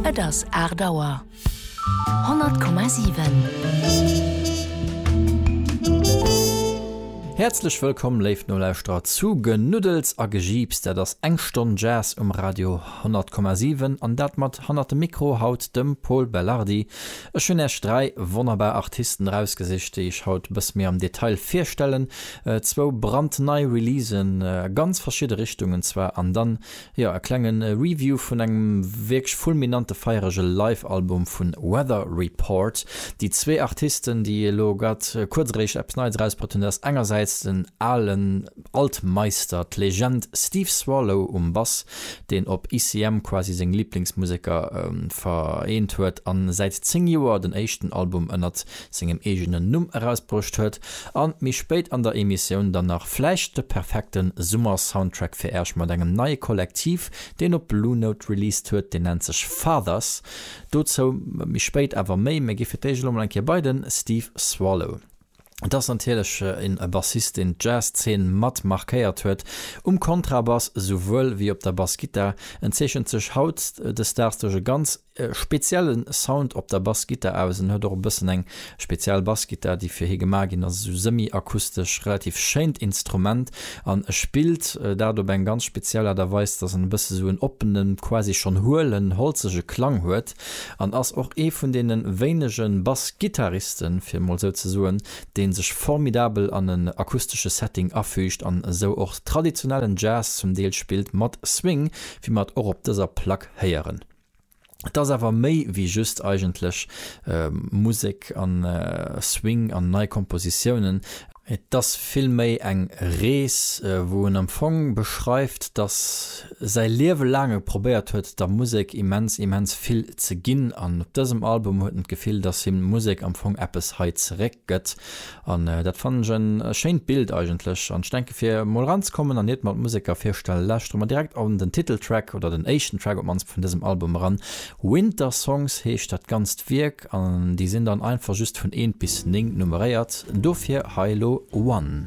Et ass aacht Auer. 100,7. Häerzlech wëllkomm, léif Nolauschterer, zu Genuddels a Gejiips. Dat ass eng Stonn Jazz um Radio 100,7 an dat mat hannert dem Mikro haut dem Pol Belardi. Ech hunn Iech dräi wonnerbar Artisten erausgesicht, déi ech haut e bësse méi am Detail virstellen. Zwou brandnei Releasen a ganz verschidde Richtungen zwar an dann Jo, e klengen Review vun engem wierklech fulminante feierege Live Album vun Weather Report. Déi zwee Artisten déi elo grad kuerzeréischt eppes Neies erausbrëtten dat ass engersäits den alen Altmeister, d'Legend Steve Swallow um Bass, deen op ICM quasi seng Liblingsmuseker vereent huet an säit 10 Joer den éischten Album ënnert sengem eegenen Numm erausbruecht huet, an méi spéit an der Emissioun dann nach vläicht de perfekte Summer-Soundtrack fir Äerch mat engem neie Kollektiv, deen op Blue Note released huet, deen nennt sech Fathers. Dozou méi spéit awer méi. Mir gi fir d'éischt elo mol eng Kéier bei de Steve Swallow. Et ass natierlech en Bassist, deen d'Jazz-Zeen mat markéiert huet, um Kontrabass esouwuel wéi op der Bassgittar. En zeechent sech haut de Stars duerch e ganz. speziellen Sound op der Bassgittar aus en huet och e bëssen eng speziell Bassgittar déi fir hie gemaach ginn ass, esou semi-akustesch, relativ schéint Instrument an e spillt dat op eng ganz speziell Aart a Weis dass en e bësse sou en oppene, quasi schonn huelen, holzege Klang huet an ass och ee vun deene wéinege Bassgittaristen, fir emol esou ze soen, dee sech formidabel an en akustesche Setting afüügt an esou och traditionellen Jazz zum Deel spillt mat Swing, wéi mer et och op dëser Plack héieren. Et ass awer méi wéi just eigentlech Musek an Swing an nei Kompositiounen. Et ass vill méi eng Rees, wou en am Fong beschreift, dass säi Liewe laang e probéiert huet, der Musek immens, immens vill ze ginn. An op dësem Album huet en d'Gefill, dass him d'Musek am Fong eppes hei zeréck gëtt. An dat fannen ech en schéint Bild eigentlech, an ech denken fir mol eranzekommen an iert mer d'Museker virstellen lauschtere mer direkt an den Titeltrack, oder den éischten Track op d'mannst vun dësem Album eran. Winter Songs heescht dat ganzt Wierk an déi sinn dann einfach just vun 1 bis 9 nummeréiert, dofir hei elo One.